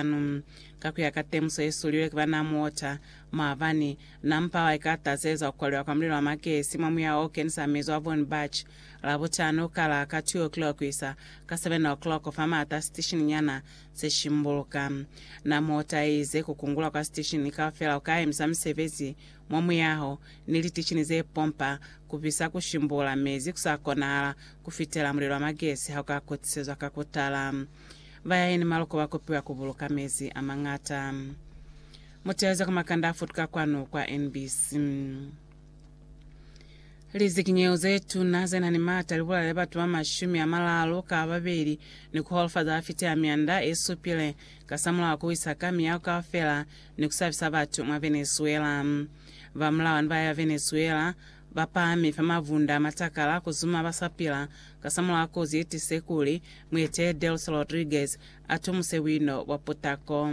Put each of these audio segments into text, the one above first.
Sanu, ka ku ya ka temuso ye sulilwe ki banaa muota, maabani, na mpawa i ka tazeza ku kwaliwa kwa mulilo wa makesi mwa muyaho o kenisa mezu a Vornbach, Labutano, ka la ka 2 o'clock ku isa ka 7 o'clock fa maata a sitishini nyana se shimbuluka. Na muota ye ize ku kungulwa kwa sitishini kaufela ku ka emisa misebezi mwa muyaho, ni litishini ze pompa, ku bisa, ku shimbula mezi ku sa konahala ku fitela mulilo wa makesi ha u ka kutisezwa ka ku tala. Bayaeni maloko ba kopiwa ku buluka mezi a mañata. Muteeleze ku makanda a futuka kwanu kwa NBC. Lizikinyeho ze tuna ze na ni maata li bulaile batu ba mashumi a malalu ka babeli ni ku holofaza ba fiteha mianda e supile kasamulaho wa ku wisa ka miyaho kaufela ni ku sabisa batu mwa Venezuela. Ba mulawana ba ya Venezuela ba pahami fa mavunda a matakala ku zuma ba sa pila kasamulaho kozi ye tise kuli mueteeli Delcy Rodriguez a tomuse buino bwa putako.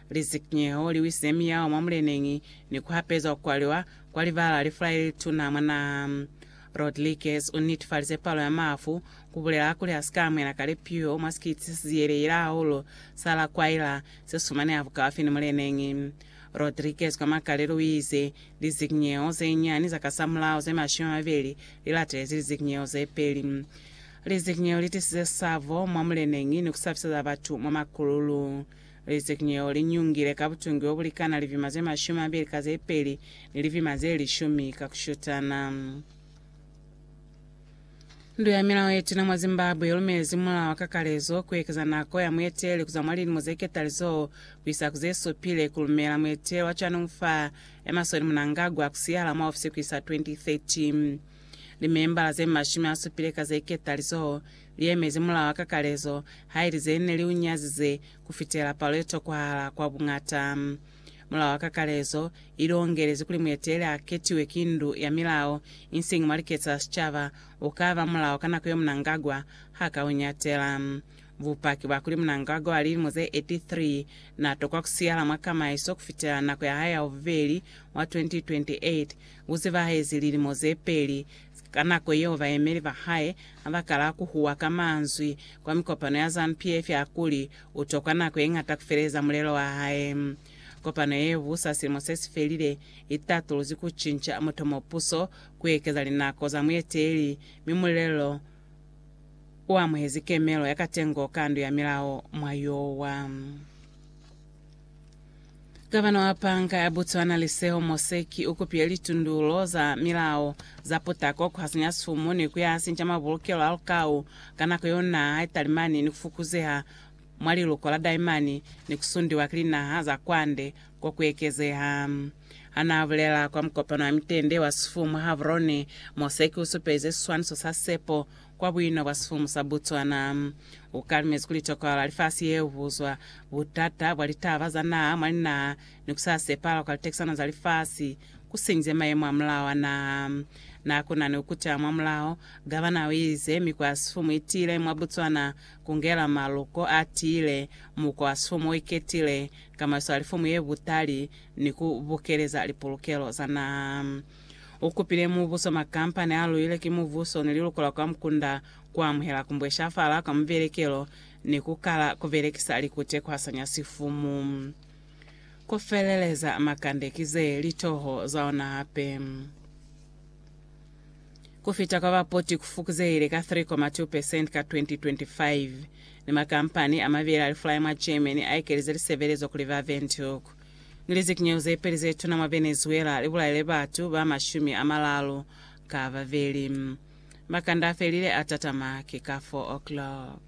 Lizikinyeho li wisize miyao mwa muleneñi ni ku hapezwa ku kwaliwa kwa libala li fula le li tuna mwa naha. Rodriguez u netifalize palo ya mafu, ku bulela kuli a si ka amuhela kale piho mwa sikiti se si ziyelehile hahulu sa La Guaira se sumaneha bukaufi ni muleneñi. Rodriguez kwa makalelo u ize, Lizikinyeho ze nyani za kasamulaho ze mashumi a mabeli li latelezi lizikinyeho ze peli. Lizikinyeho li tisize sabo mwa muleneñi ni ku sabiseza batu mwa makululu. Lizikinyeho li nyungile ka butungi bo bu likana livima ze mashumi a mabeli ka ze peli ni livima ze lishumi ka ku shutana. Ndu ya Milao ye Tuna mwa Zimbabwe i lumezi mulao wa kakalezo ku ekeza nako ya mueteli ku za mwa lilimo ze ketalizoho ku isa ku ze supile, ku lumela mueteli wa cwanelufu fa Emmerson Mnangagwa ku siyahala mwa ofisi ku isa 2030. Limembala ze mashumi a supile ka ze ketalizoho li emezi mulao wa kakalezo, haili ze ne li u nyazize ku fitela palo ye tokwahala kwa buñata. Mulao wa kakalezo i longelezi kuli mueteli a ketiwe ki ndu ya milao, insiñi mwa liketsi la sicaba, u ka ba mulao ka nako yo Mnangagwa ha ka u ñatela. Bupaki bwa kuli Mnangagwa wa lilimo ze 83 na tokwa ku siyala mwa kamaiso ku fitela nako ya hae ya bubeli mwa 2028 bu zibahezi lilimo ze peli, ka nako yeo bayemeli ba hae ha ba kala ku huwa ka manzwi kwa mikopano ya Zanu-PF ya kuli, U tokwa nako ye ñata ku feleza mulelo wa hae. Kopano ye busa silimo se si felile i tatuluzi ku cinca mutomopuso, ku ekeza linako za mueteleli, mi mulelo u amuhezi kemelo ya katengo ka ndu ya milao mwa yowa. Kabano ya Panka ya Botswana Liseho Moseki u kupile litundulo za milao za putako ku hasinya sumu ni ku ya sinca mabulukelo a lukau ka nako yo naha i talimani ni ku fukuzeha mwa liluko la daimani ni ku sundiwa ki linaha za kwande ko ku ekezeha. Ha n'a bulela kwa mukopano wa mitende wa Sfu mwa Gaborone, Moseki u supelize siswaniso sa sepo Kwa buino bwa sifumu sa Botswana, ku kalimezi kuli tokohalo ya lifasi ye ubuzwa butata bwa litaba za naha mwa linaha ni ku sa sepahala kwa litekisano za lifasi ku sinyize mayemo a mulao a naha. Na ku na ni ku kuteha mwa mulao, gavana o ize, mi kwa sifumu i tiile mwa Botswana ku ngela maluko a tiile, muko wa sifumu o iketile, kamaiso ya lifumu ye butali, ni ku bukeleza lipulukelo za naha. U kupile mubuso makampa ne a luile ki mubuso ne liluko la kwa mukunda ku amuhela ku mbweshafala kwa mubelekelo ni ku kala ku belekisa likute ku hasanya sifumu. Ku feleleza, makande ki ze li toho za ona hape. Ku fita kwa bapoti ku fukuzehile ka 3.2 percent ka 2025, ni makampani a mabeli a lifulai mwa Germany a ekelize lisebelezo kuli ba Windhoek. Ni lizikinyeho zepeli zetuna mwa Venezuela libulaile batu ba mashumi amalalu ka babeli. Makanda afelile atatama ki ka 4 o'clock.